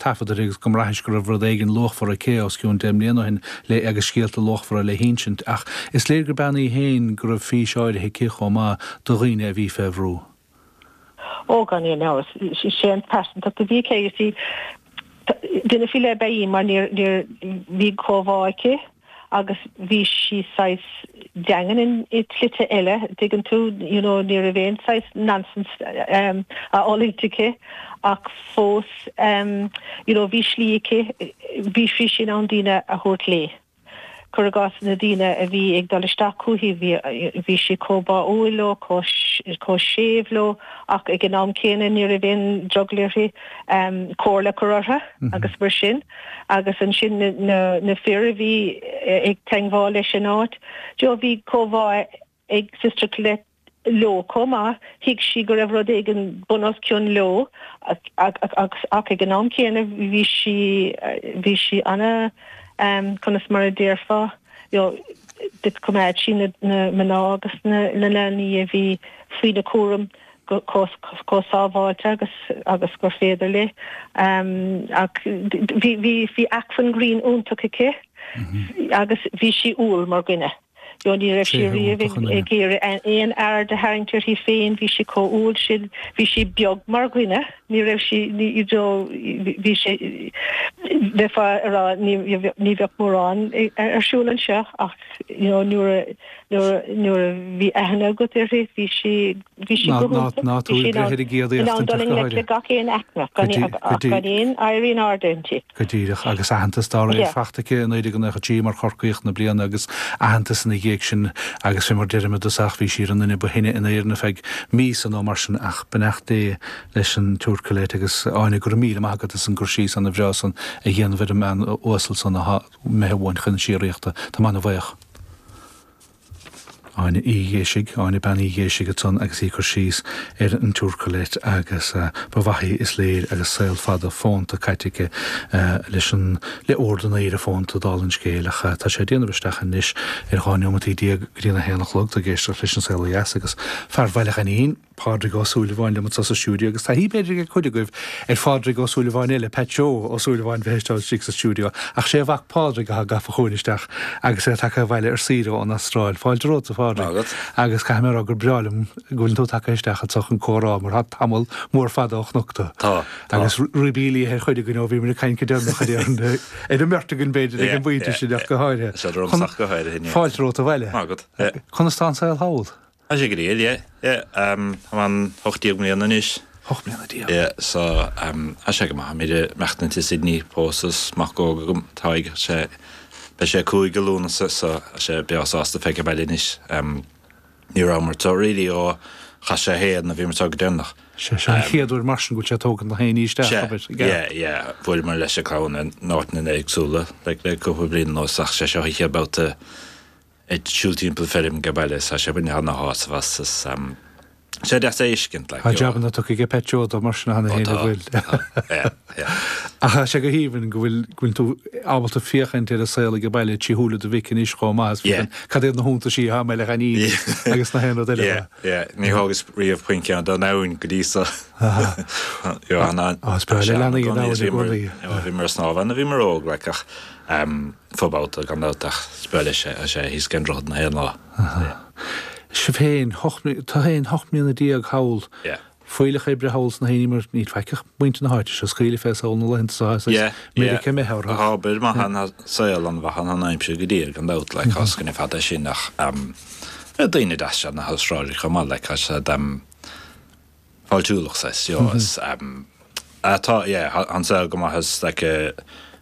taifead uirthi agus go mbraithfimis go raibh rud éigin luachmhar aici os cionn deich mbliana ó shin le agus scéalta luachmhara le hinsint. Ach is léir gur bean í féin go raibh fís áirithe aici chomh maith do dhaoine a bhí fé bhrú. Ó, gan aon amhras, is é an pearsantacht a bhí aici. Duine faoi leith ab ea í mar you know bhí comhbhá aici. agus bhí sí saghas daingean i slite eile, dtuigeann tú, you know, ní raibh aon saghas nonsense á fhulaingt aici ach fós, you know, bhí slí aici, bhí sí in ann daoine a thabhairt léi. Cuir i gcás, na daoine a bhí ag dul isteach chuici, bhí sí chomh báúil leo, chomh séimh leo ach ag an am céanna ní raibh aon drogall uirthi comhairle a chur orthu agus mar sin. agus ansin na fir a bhí ag teangmháil leis an áit. You know, bhí comhbhá ag Sister Colette leo chomh maith, thuig sí go raibh rud éigin bun os cionn leo ach ag an am céanna bhí sí, bhí sí ana, conas mar a déarfá, you know, choimeád sí na mná agus na leanaí a bhí faoina cúram go chomh sábháilte agus agus gur féidir léi ach bhí bhí bhí acmhainn grinn iontach aici agus bhí sí umhal mar dhuine. You know ní raibh sí riamh ag iarraidh aon aird a tharraingt uirthi féin, bhí sí chomh umhal sin, bhí sí beag mar dhuine, ní raibh sí you know bhí sé bheifeá ag rá ní bheadh mórán ar siúl anseo ach you know nuair a Nuair a bhí aithne agat uirthi, bhí sí go hiontach. Ná tabhair breith ar an gcéad éachtaint ach go háirithe. Go díreach. Gan aon éirí in airde inti. Go díreach. Agus aitheantas dá réir faighte aici i 1993 mar Chorcaíoch na Bliana agus aitheantas ina dhiaidh sin agus fé mar deirim i dtosach bhí sí ar an duine ba shine in Éirinn ar feadh míosa nó mar sin ach beannacht Dé leis an tSiúr Colette. Agus Áine, go raibh míle maith agat as an gcur síos ana bhreá san a dhéanamh ar an mbean uasal san a imithe uainn chun síoraíochta. Táim ana bhuíoch Áine Uí Dhéisigh, Áine Bean Uí Dhéisigh ansan agus í ag cur síos ar an tSiúr Colette agus ba mhaith í, is léir, agus saol fada fónta caite aici leis an, le Ord an Aoire Fónta, dála an scéil, ach tá sé ag déanamh isteach anois ar 12 neomataí go dtí an 1 a chlog, tú ag éisteacht leis an Saol Ó Dheas agus Fear Bhaile Ghainín. Pádraig Ó Súilleabháin liom anso sa stiúideo, agus taithí, b'fhéidir, ag cuid agaibh ar Phádraig Ó Súilleabháin eile, Pat 'Joe' Ó Súilleabháin bheith istigh istigh sa stiúideo, ach sé a mhac Pádraig athá gafa chugainn isteach agus é tagtha abhaile ar saoire ón Astráil. Fáilte romhat, a Phádraig, agus caithfidh mé a rá gur breá liom go bhfuileann tú tagtha isteach anso chun comhrá, mar tá tamall mór fada ó chonac tú. Tá, tá. Agus ribí liatha ar chuid againn, ó bhíomar ag caint go deireanach aréir, ar an mbeirt againn, b'fhéidir, ag an bpointe sin ach go háirithe. Fáilte romhat abhaile. Go raibh maith agat. Conas tá an saol thall? Tá sé go diail, yeah, yeah, um, táim ann hocht déag mbliana anois. Hocht mbliana déag. Yeah, so, um, tá sé go maith, táimid ag maireachtaint i Sydney, pósta is mac óg agam, tá ag, tá sé, beidh sé cúig i Lúnasa, so, tá sé breá sásta a bheith age baile anois, um, ní rabhamar to really ó chaith sé a haon nuair a bhíomar to go deireanach. Sé seo an chéad uair mar sin go bhfuil sé ag tógaint gach aon ní isteach, Sé, abair, ag yeah, yeah, bhuaileamar leis an gclann in áiteanna éagsúla, like, le cúpla bliain anuas, ach sé seo an chéad babhta ag siúl timpeall feirm age baile sa Sibeirn thar n-ais ann is tá sé deas é a fheiscint like. Tá jabanna tugtha aige Petro dó mar sin cheana féin an bhfuil. Ach tá sé go haoibhinn go bhfuil go bhfuil tú ábalta féachaint ar an saol age baile trí shúile do mhic anois chomh maith is féidir. Cad iad na hiontaisí atá Meilech Aini agus gach aon rud eile dó? Yeah, ní thógas riamh puinn ceann den abhainn go dtí so. Bhí mé ag snámh ann nuair a bhíomar óg like ach. fo-bhabhta gan dabht ach is breá leis é tá sé thíos ag an droichead gach aon lá. Sea. Sibh féin, tú féin hocht mbliana déag thall, fuílleach oibre thall sna hAoine mar níl faic ach muintir na háite seo, ag scaoileadh fén saol na laethanta so as Meiriceá méith orthu. Tá obair mhaith ann, saol an-mhaith ann, an aimsir go diail gan dabht le cosc an fada sin ach daoine deasa iad na hAstrálaigh chomh maith like tá siad an-fháiltiúil is, you know, is tá, yeah, an saol go maith is like,